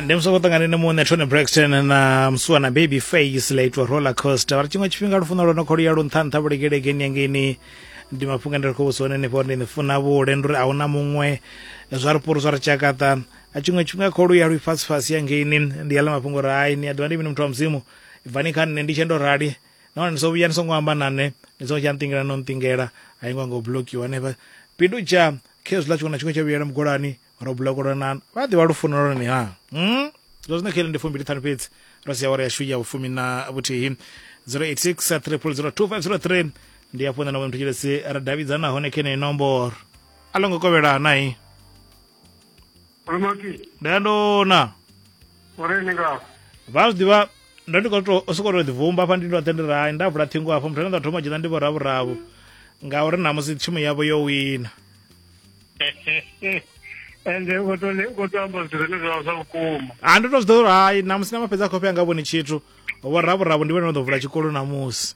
ndi musoko ṱangane ne muṋe tony braxton na musuwa na baby face la itwa roller coaster vha ri tshiṅwe tshifhinga lufuno lwo no khou luya lu nṱha nṱha vhulekelekeni yangeini ndi mafhungo ndi ri khou vhusa one ni fhori ndi ni funa vhule ndi uri a huna muṅwe zwa ri poro zwa ri tshakaṱa a tshiṅwe tshifhinga khou luya lwi fasi fasi yangeini ndi yala mafhungo uri hai ni a ḓiwa ndi mini muthu wa mudzimu bvani kha nṋe ndi tshendo rali nahone ndi so vhuya ni songo amba na nṋe ni songo tsha nṱingela no nṱingela a yi ngo ngo blokiwa hanefha pindu tsha Khezwiḽa tshiṅwe na tshiṅwe tsha vhuyela mugolani, ro bulekolonana. Vha a ḓivha lufuno lwone ha? Hmm? Zwa zwino kheli ndi fumbili ṱhanu fhedzi ro sia awara yashu ya vhufumi na vhuthihi 086 3002503 ndi hafho nṋe na vho muthu tshilesi ra davhidzana hone khe neyi nomboro a lo ngo kovhela nai Ramaki, ndandona uri ni nga vha zwi ḓivha ndo ndi khou to u sokou tou ḓivumba hafha ndi ndo tendera hai nda vula ṱhingo hafho muthu ane nda thoma u dzhena ndi vho ravhuravu ngauri namusi thimu yavho yo wina ende u khou to le- u khou to amba zwithu zwine zwa vha zwa vhukuma. a ndi to zwi ḓivha uri hai namusi na mafhedzi a khofhe anga vhoni tshithu vho ravhuravu ndi vhone no ḓo vula tshikolo namusi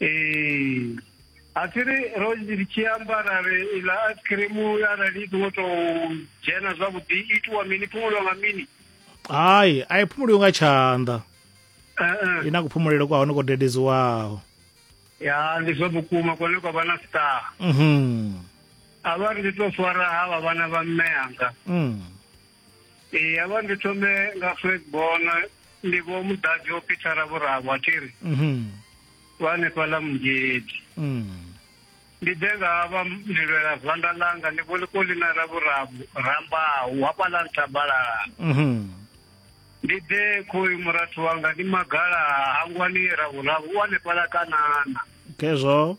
Eh, asiri ro ri tshi amba ra ri iḽa ice cream arali i songo tou dzhena zwavhuḓi i itiwa mini phumulo nga mini hai a i phumuliwi nga tshanḓa Eh, eh. i na kuphumulele kwa hone ko dededziwaho ya ndi zwa vhukuma kone kwa vha na star mhm a vha ri ndi tou fara ha vha vhana vha mme anga mm. Ee, ya vha ndi thome nga Fredborn ndi vho muḓadzi o Peter Vhurabo a thiri mhm. vha hanefha ḽa mungedi mm. ndi ḓe nga vha ndi lwela zwanḓa ḽanga ndi vholikoli na ra vhurabu rambaho hafhaḽa nthabalala mhm. ndi ḓe khoyu murathu wanga ndi magala hangwani ra vhurabu u hanefhaḽa kanana khezwo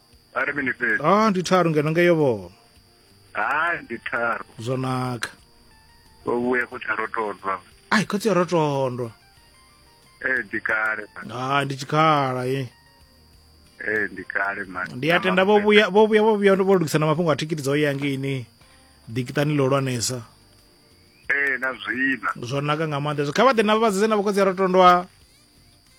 a ri mini fhedzi ah ndi tharu ngeno ngeyo vho ha ndi tharu zwo naka o vhuya khotsi a rotondwa ai khotsi a rotondwa ee eh, ndi kale ha ndi tshikhala ye ee eh, ndi kale man ndi a tenda vho vhuya vho vhuya vho vhuya vho lugisa na mafhungo a thikiti dzo ya ngini dikitani ḽo lwanesa ee eh, na zwina zwo naka nga maanḓa kha vha ḓe na vha vhadzedze na vhokhotsi a rotondwa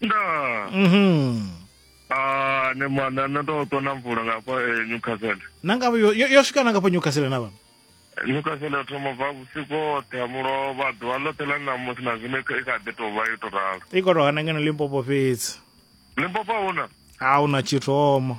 ndaa Mhm. Ah, ne mwana no to to na mvula ngapa eh, Newcastle. nanga yo, yo, yo swika nanga pa newcastle na vhano Newcastle thoma bva vhusiku hoṱhe ha mulovha ḓuvha ḽoṱhe ḽa ṋamusi na zwino i kha- i kha ḓi tou vha yo tou ralo. i khou tou hana ngeno limpopo fhedzi Limpopo huna a hu na tshithomo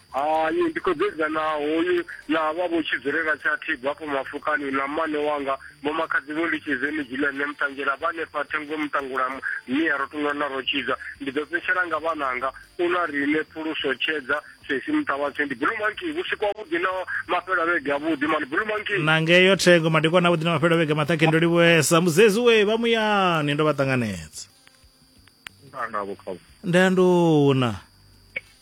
Hai, ndi khou bebwa na hoyu na havha vho Tshidzulela tsha Thigo hafho Mafokani, na mmane wanga, vho makhadzi vho Litshizeni Gilead ne Muṱanzhela, vha hanefha Thengo Muṱangula, Mia Rotunwa na Rotshidza. Ndi ḓo fhetshela nga vhananga, u na riṋe, Phuluso, Tshedza, Sesi, Muṱavhatshe. Ndi Blue Monkey, vhusiku havhuḓi na mafhelo a vhege avhuḓi, mani Blue Monkey. Na ngeyo Thengo, madekwana avhuḓi na mafhelo a vhege maṱhakheni, ndo livhuwesa. Muzedzi we, vha muyani, ndo vha ṱanganedza. Nda navho kha Nda nduna.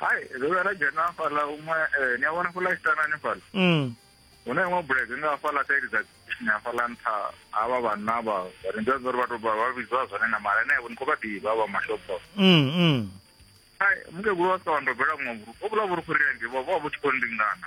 hai ro vhuya ra dzhena hafhaḽa huṅwe ni a vhona fhaḽa isitana hanefhaḽa mm. hu na iṅwe bulege nga hafhaḽa saidi dza kishini hafhaḽa nṱha havha vhanna vha ri ndi uri vha to vha vhidzwa zwone na mara ene ni khou vha ḓivha vha mashopho mm, mm. hai mukegulu wa sika wa ndobela vhuṅwe vhurukhu ho vhula vhurukhu ri ndi vho vha vhu tshi khou ndingana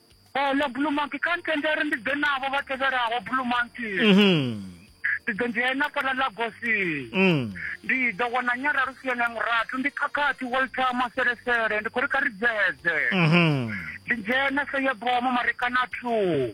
Oh, ḽa blue monkey kha ntende uri ndi ḓe navho vha tevhelaho blue monkey mhm. ndi ḓo dzhena fhaḽa lagosi mm. ndi ḓo wana nyara lusiene murathu ndi khakhathi walter maselesele ndi khou ri kha ri dzedze mhm. ndi dzhena seyebomo marekana two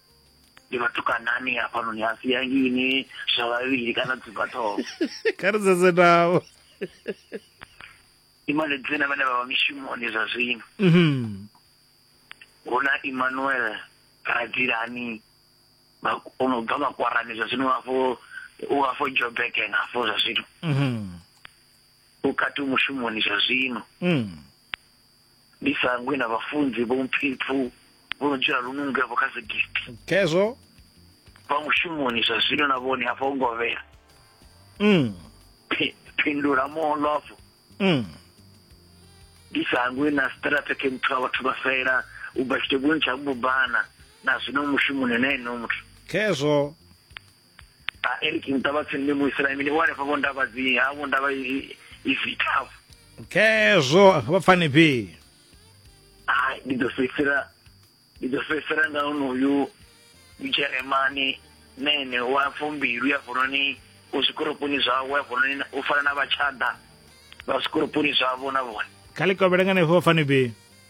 ndi vhatukanani hafhanoni a si ya ngini zwa vhavhili kana dzibva ṱhoho kha ri dzedze navho imane dzina vhane vha vha mishumoni zwa zwino mhm. hu na emmanuel radzilani o no bva makwarani zwa zwino afho u afho jobeken afho zwa zwino mhm. u kati mushumoni zwa zwino mhm. ndi sangwi na vhafunzi vho mpfipfu vho no dzula lununge vho kha zigidi khezwo vha mushumoni zwa zwino na vhone hafha u ngovhela mm. Phi- phindula moolofo Mm. ndi sangwi na strategy muthu wa vhathu vha fela u bva tshitegoni tsha mbubana na zwino mushumoni na eno muthu khezwo a eric mutava tsini ndi muisraeli ndi wale favo ndava dzi havo ndava izitavo okay zwo vha pfani phi hayi ndi ḓo fhedzisela ndi ḓo fhedzisela nga onoyu mujeremani nene wa fumbilu ya vononi u zwikoroponi zwavo ya vononi u fana na vhatshada vha zwikoroponi zwavo na vhone kha ḽi kovhela nga henefho vha pfani phi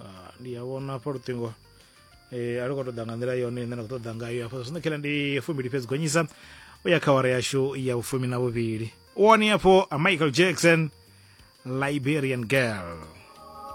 Ah, ndi a vhona hafha luṱingo eh, a lu khou tou ḓa nga nḓila yone ine na khou ṱoḓa ngayo hafha zwino khela ndi fumbili fhedzi gonyisa u ya kha wara yashu ya vhufumi na vhuvhili wone hafho a michael jackson liberian girl